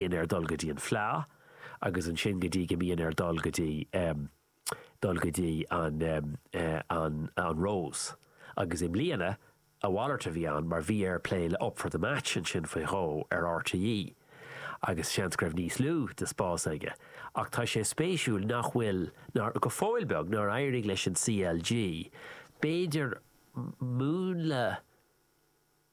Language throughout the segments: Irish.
bhíonn air dul go dtí an Fleadh agus ansin go dtí go mbíonn air dul go dtí dul go dtí an an an Rose agus i mbliana a mhalairt a bhí ann mar bhí air plé le Up for the Match ansin faoi dhó ar RTÉ agus seans go raibh níos lú de spás aige ach tá sé spéisiúil nach bhfuil ná go fóill beag nár éirigh leis an CLG b'fhéidir múnla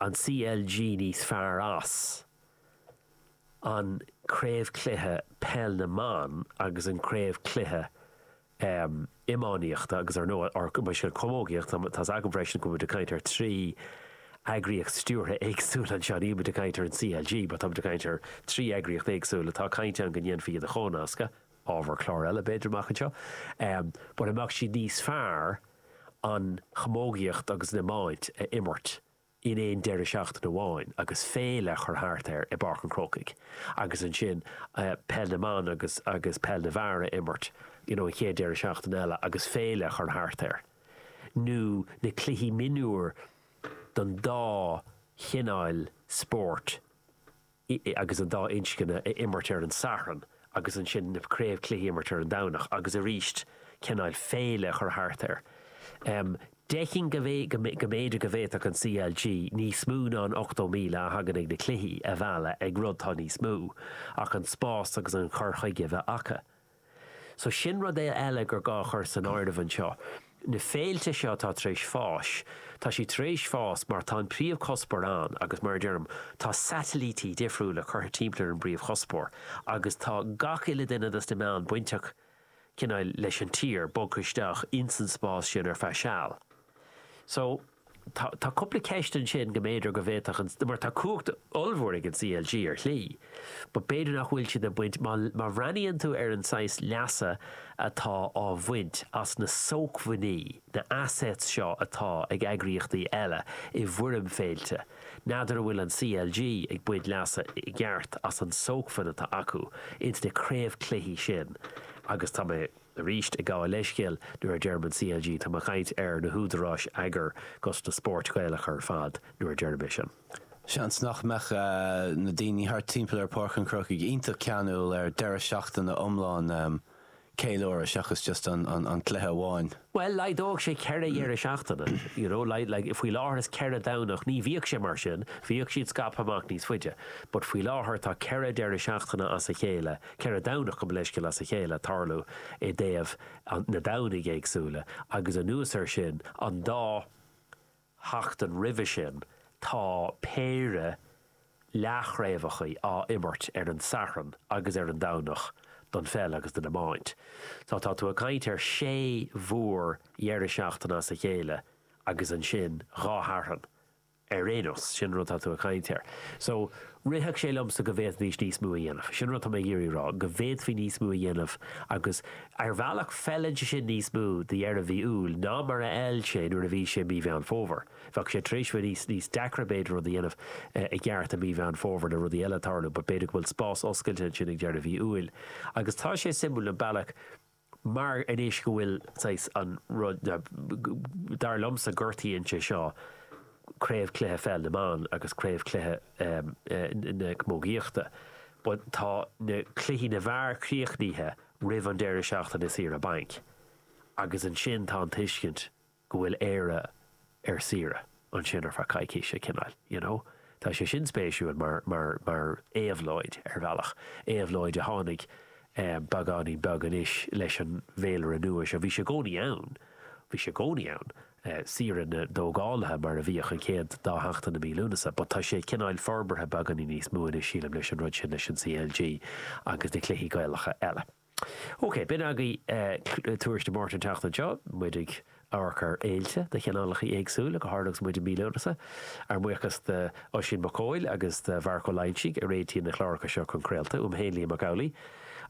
an CLG níos fearr as an Craobh Cluiche Peil na mBan agus an Craobh Cluiche Iománaíochta agus, ar ndóigh, ár gCoimisiún Camógaíochta. Tá's agam freisin go mbeimid ag caint ar trí eagraíocht stiúrtha éagsúil anseo. Ní muid ag caint ar an CLG, but táimid ag caint ar trí eagraíocht éagsúil a bhfuil caint ann go ndéanfaí iad a chomhnascadh. ábhar cláir eile, b'fhéidir, amach anseo, but an mbeadh siad níos fearr an chamógaíocht agus an iomáint a imirt in aon deireadh seachtaine amháin agus féile a chur thart air i bPáirc an Chrócaigh agus ansin Peil na mBan agus agus Peil na bhFear a imirt you know an chéad deireadh seachtaine eile agus féile a chur thart air nó na cluichí mionúir don dá chineáil spóirt ii, agus an dá inscne a imirt ar an Satharn agus ansin na craobh cluichí a imirt ar an Domhnach agus arís cineáil féile a chur thart air. Feicim go mb'fhéidir go bhféadfadh an CLG níos mó ná an 80,000 a thagann ag na cluichí a mhealladh ag rud atá níos mó ach an spás agus an cur chuige a bheith acu. So sin rud e eile gur gá a chur san áireamh anseo. Na féilte seo atá tar éis fás, tá siad tar éis fás mar tá an príomhchuspóir ann agus mar a deirim, tá satailítí difriúla curtha timpeall ar an bpríomhchuspóir agus tá gach uile duine dos na meáin bainteach cineál leis an tír bogtha isteach ins an spás sin ar feadh seal. So. Tá cúpla ceist ansin go mb'fhéidir go bhféadfadh an, mar tá cumhacht ollmhór ag an CLG ar shlí, but b'fhéidir nach bhfuil siad ag baint, má má bhreathnaíonn tú ar an saghas leasa atá á bhaint as na sócmhainní, na assets seo atá ag eagraíochtaí eile i bhfoirm féilte, n'fheadar an bhfuil an CLG ag baint leasa i gceart as an sócmhainn atá acu ins na craobhchluichí sin agus tá mé. Arís, ag gabháil leithscéil nuair a deirim an CLG, táim ag caint ar na húdaráis eagair agus na spóirt Ghaelacha ar fad nuair a deirim é sin. Seans nach mbeadh na daoine thart timpeall ar Pháirc an Chrócaigh iontach ceanúil ar deireadh seachtaine iomlán ceiliúradh seachas just an cluiche amháin. Bhuel, laghdódh sé ceithre dheireadh seachtaine, you know, like, faoi láthair is ceithre Dhomhnach, ní bhíodh sé mar sin, bhíodh siad scaipthe amach níos faide, but faoi láthair tá ceithre deireadh seachtaine as a chéile, 4 Domhnach gabh mo leithscéal as a chéile ag tarlú i dtaobh na Domhnaigh éagsúla agus anuas air sin an dá sheachtain roimhe sin tá péire leathchraobhachaí á imirt ar an Satharn agus ar an Domhnach don pheil agus don iomáint. So tá tú ag caint ar sé mhór dheireadh seachtaine as a chéile agus ansin dhá Shatharn. ar aon nós, sin an rud atá tú ag caint air. So, rithfeadh sé liomsa go bhféadfaidís níos mó a dhéanamh. Sin an rud atá mé ag iarraidh a rá, go bhféadfaí níos mó a dhéanamh agus, ar bhealach, feileann sé sin níos mó do dheireadh mhí Iúil ná mar a fheil sé nuair a bhí sé mí Mheán Fómhair. Bheadh sé tar éis bheith níos, níos deacra, b'fhéidir, rud a dhéanamh i gceart i mí Mheán Fómhair le rudaí eile ag tarlú but b'fhéidir go bhfuil spás oscailte ansin ag deireadh mhí Iúil. Agus tá sé suimiúil an bealach, mar anois go bhfuil saghas an rud dar liomsa gortaíonn sé seo craobhchluiche pheil na mBan agus craobhchluiche na camógaíochta but tá na cluichí na bhfear críochnaithe roimh an deireadh seachtaine saoire bainc agus ansin tá an tuiscint go bhfuil Éire ar saoire ansin ar feadh coicíse cineáil you know. Tá sé sin spéisiúil mar mar mar éabhlóid ar bhealach, éabhlóid a tháinig eh beagáinín beag anois leis an bhféilire nua seo. Bhí sé i gcónaí ann, bhí sé i gcónaí ann, eh saoire na dtógálaithe mar a bhíodh an chéad dá sheachtain i mí Lúnasa but tá sé cineáil forbartha beagáinín níos mó anois sílim leis an rud sin leis an CLG agus na cluichí Gaelacha eile. OK, b'in agaibh Tuairisc Dé Máirt an tseachtain seo, muid ag amharc ar fhéilte de chineálacha éagsúla, go háirithe agus muid i mí Lúnasa. Ár mbuíochas d'Oisín Mac Cóil agus do Mharc Ó Loingsigh a réitíonn na cláracha seo chun craolta, uaim féin Liam Mac Amhlaigh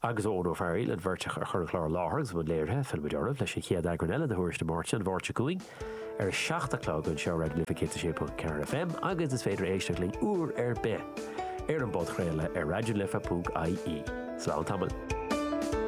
agus ó Eoin Ó Fearaíl, an bheirt a chur an clár i láthair agus i mbun léirithe. Fillfimid oraibh leis an chéad eagrán eile de Thuairisc Dé Máirt an Mháirt seo chugainn. ar a seacht a chlog anseo ar Raidió na Life 106.4 FM agus is féidir éisteach linn uair ar bith ar an bpodchraoladh ar raidionalife.ie. Slán tamall.